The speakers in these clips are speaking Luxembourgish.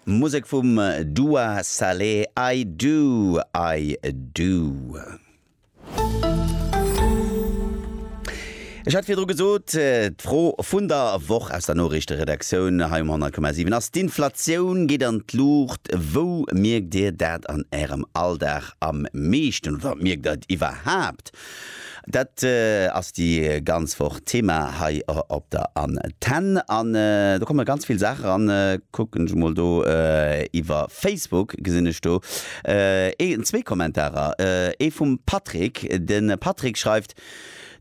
Musek vum Dua Saleh I do, I do. Ech hat virdru gesot, d'Fro vun der Woch aus der Noriichteredaktioun hei um 100,7 ass, D'Inflatioun geet an d'Luucht, wou mierkt Dir dat an Ärem Alldag am meeschten oder mierkt Der et iwwerhaapt Dat ass déi ganz Woch Thema hei op der Antenn. An do komme ganz vill Saache ran. Kucken ech emol do iwwer Facebook, gesinn ech do ee zwee Kommentarer. Ee vum Patrick. De Patrick schreift,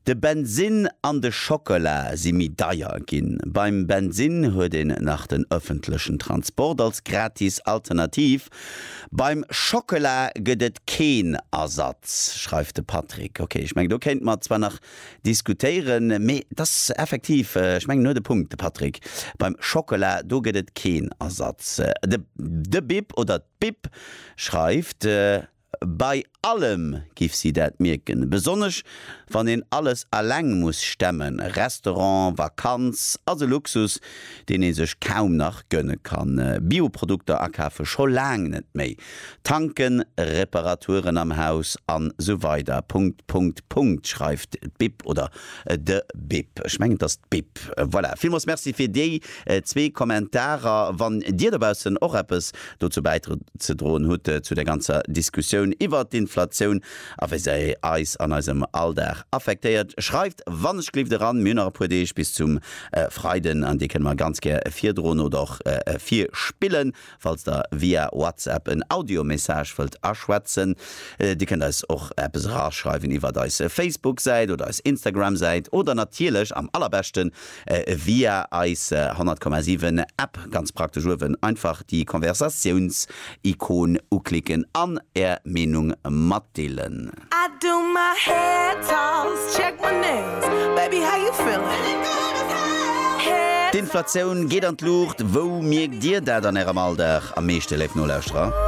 De Bensinn an de Schockela si méi deier ginn. Beim Bensinn huet een nach den ëffentlechen Transport als gratis Alternativ. Beim Schockela gëtt et keen Ersatz, schreift de Patrick. Ok, ech mengen, do kéinte mer zwar nach diskutéieren, mee et ass effektiv, ech mengen, en huet e Punkt, de Patrick. Beim Schockela, do gëtt et keen Ersatz. De Bip oder d'Bip schreift. Bei allem giff si dat mierken, besonnesch wann een alles alleng muss stemmen, Restaurant, Vakanz ass e Luxus deen ee sech kaum nach gönne kann, Bioprodukter akafe scho laang net méi, Tanken, Reparaturen am Haus an sou weider. Punkt, Punkt, Punkt, schreift d'Bib oder de Bib, ech mengen et ass d'Bib. Voilà, villmols merci fir déi zwee Kommentarer. Wann dir dobaussen och eppes dozou bäizedroen hutt zu der ganzer Diskussioun iwwert d'Inflatioun a wéi se eis an eisem Alldag affektéiert, schreift wannechglift eran. Mir hunn nach e puer Deeg bis zum Freiden an déi kënne mer ganz gär virdroen oder och virspillen. Falls der via WhatsApp en Audiomessage wëllt aschwätzen, dir kënnt eis och eppes eraschreiwen iwwert eis Facebook-Säit oder eis Instagram-Säit oder natierlech am allerbeschten via eis 100,7 App ganz praktesch uewen einfach déi Konversatiouns-Ikon uklicken an är Meenung matdeelen. D'Inflatioun geet an d'Luucht, wou mierkt dir dat an ärem Alldag am meeschte, léif Nolauschterer?